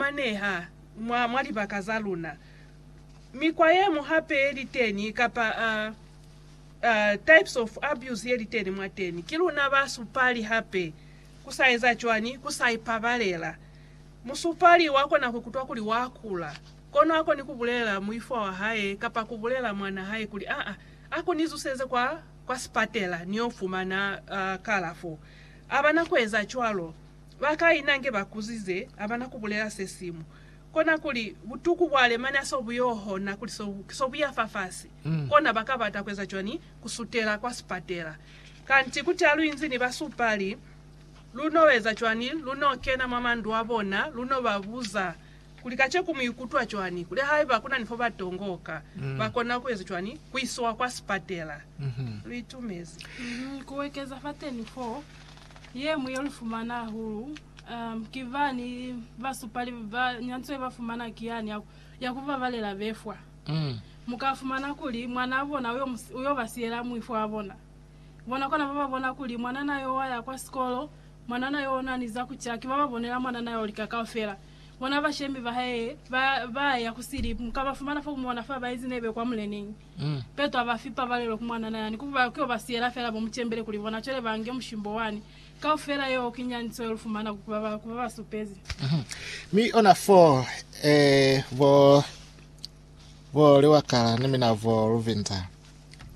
fumaneha mwa, mwa libaka za luna. Mikwa ye mu hape ye li teni, kapa, uh, uh, types of abuse ye li teni mwateni. Ki luna ba supali hape. Ku sa eza cwani? Ku sa ipabalela. Musupali wa kona ku kutwa kuli wa kula, kono ha koni ku bulelela muifwa wa hae kapa ku bulelela mwan'a hae kuli, Aa, a ko ni zuseze kwa, kwa sipatela, ni yo fumana, uh, kalafo. A bana ku eza cwalo. Ba kai nange ba kuzize ha ba na ku bulela se simu. Kona kuli, butuku bwa Alemania so bu y'o hona kuli so, so bu ya fafasi. Kona ba ka bata ku eza cwañi? Ku sutela kwa sipatela. Kanti kuti ha lu inzi ni basupali, lu n'o eza cwañi? Lu n'o kena mwa mandu a bona, lu n'o ba buza kuli, Kaceku mu ikutwa cwañi? Kuli haiba ku na ni fo ba tongoka, ba kona ku eza cwañi? Ku isiwa kwa sipatela. Lu itumezi. Ku ekeza fateni f'o, Ye mu ye lu fumana hahulu um, ki bani basupali ba nyantswe ba fumana ki yani ya, ya ku babalela befwa. Mm. Mu ka fumana kuli mwanaa bona u yo, mu, u yo ba siyela muifo wa bona. Bona kona ba ba bona kuli mwanana yo wa ya kwa sikolo, mwanana yo na ni za ku ca, ki ba ba bonela mwanana yo lika kaufela. Bona bashemi ba hae ba, ba ya ku sili, mu ka ba fumana fo ku mona fa ba inzi nebe kwa muleneñi. Petro aba fi pabalelo ku mwanana yani, ku ba kio ba siyela fela bo mucembele kuli bona cwele ba nge mushimbo wani. Kaufela yeo ki nyaniso ye lu fumana ku ba ba, ku ba ba supezi. Mi ona fo, eh, bo, bo liwakala ni mina bo luvinza,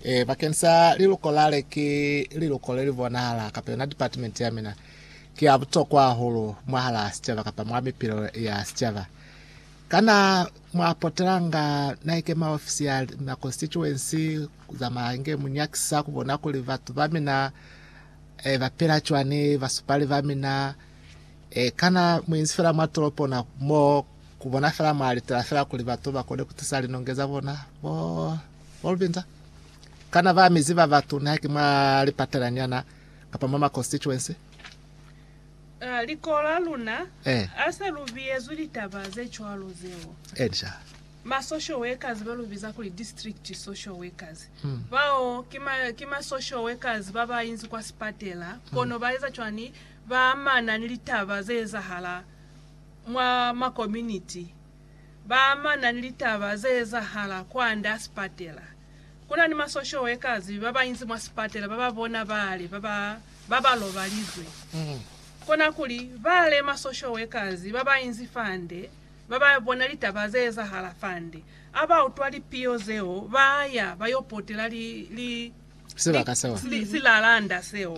eh, bakeng sa liluko lale, ki liluko le li bonahala, kapa yona department ya mina, ki ya butokwa hahulu mwahalaa sicaba kapa mwa mipilo ya sicaba. Kana mwa potelanga naike maofisi ya ma constituency za mahange mu nyakisa ku bona kuli batu ba mina e, ba pela cwani basupali ba mina? E, kana mu inzi fela mwa tolopo na mo ku bona fela mwa litela fela kuli batu ba kone ku tisa linonge za bona? Bo, bo Lubinza? Kana ba mizi ba batu nihaki mwa lipatela nyana kapa mwa ma constituency? Liko la luna ha se lu biyezwi litaba ze cwalo zeo, ma social workers ba lu biza kuli district social workers, bao ki ma social workers ba ba inzi kwa sipatela kono ba eza cwani? Ba amana ni litaba ze ezahala mwa ma community, ba amana ni litaba ze ezahala kwand'a sipatela. Ku na ni masoshoe ka zibi ba ba inzi mwa sipatela ba ba bona bale ba ba ba ba lobalizwe. Kona kuli, bale masoshoe ka zibi ba ba inzi fande, ba ba bona litaba ze ezahala fande, a ba utwa lipiyo zeo, ba ya ba yo potela li, li, li, Sibaka seo. li, silalanda seo.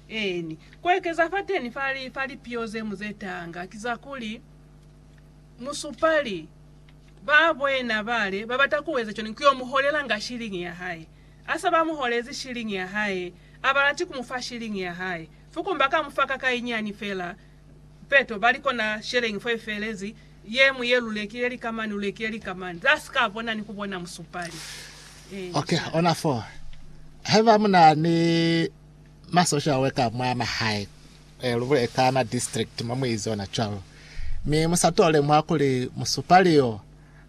Eeni. Ku ekeza fateni fa li, fa lipiyo ze mu ze tanga, ki za kuli, musupali Ba bwena bale babata kueza cwani kuyo muholela nga shilingi ya hae. Asa ba muholezi shilingi ya hae, abalati kumufa shilingi ya hae. Fuku mba ka mufa ka kainyani fela, peto bali kona shelengi fo ifelezi, ye mu ye lulekile lika mani, lulekile lika mani. Za si ka bona ni kubona musupali. Ok, ona foo. Haiba muna ni masosha we ka mwa mahae, Ee, lu bule ka na district mo mu izi ona cwalo. Mi mu sa tole mwa kuli musupali yo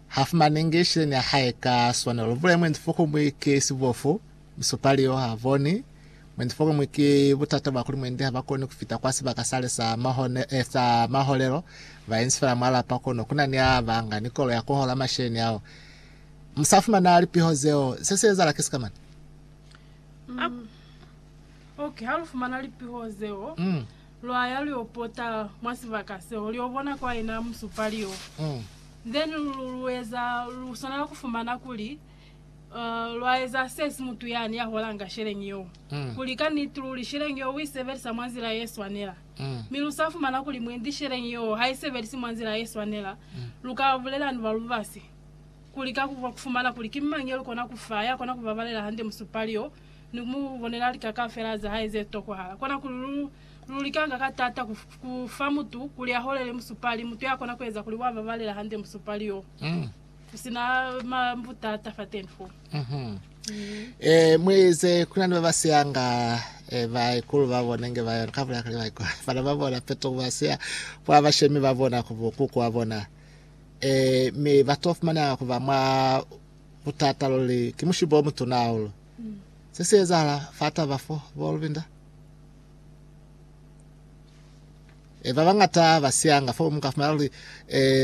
ha fumanengi shileni ya hae ka swanelo. Lu bule mwendi fo kumwi ki sibofu, musupali yo ha boni. Mwendi fo kumwi ki butata bwa kuli mwendi ha ba koni ku fita kwa sibaka sale sa mahone, eh, sa maholelo. Ba inzi fela mwa lapa kono ku na ni a ba nga ni kolo ya ku hola masheleni ao. Mu sa fumana lipiho zeo, se si ezala ki sikamana. Mm. Ok, ha lu fumana lipiho zeo, lwa ya lu yo pota mwa sibaka seo, lu yo bona kwa ina musupali yo. Then lu, lu eza, lu swanela ku fumana kuli uh, lwa eza se si mutu yani ya holanga sheleñi yo, kuli ka niti luli sheleñi yo u i sebelisa mwa nzila ye swanela. Mi lu sa fumana kuli mwendi sheleñi yo ha i sebelisi mwa nzila ye swanela, lu ka bulela ni ba lubasi, kuli ka ku fumana kuli ki mañi yo lu kona ku fa, ya kona ku babalela hande musupali yo. ni ku mu bonela lika kaufela za hae ze tokohala. Kona kuli lu, lu likanga ka taata ku, ku fa mutu kuli a holele musupali, mutu ya kona ku eza kuli wa babalela hande musupali yo, ku si na ma, butata fateni fo. Eh, muize kuna ni ba ba siyanga eh, baikulu ba bona nge ba yona kabula kale baikulu bana ba bona peto ba siya kwa bashemi ba bona ku bokuku wa bona eh, mi ba to fumananga ku ba mwa Butata luli ki mushibo o mutuna hahulu. Se si ezahala fa taba fo, bo Lubinda? E, ba bañata ba siyanga fo, mu ka fumana luli, e,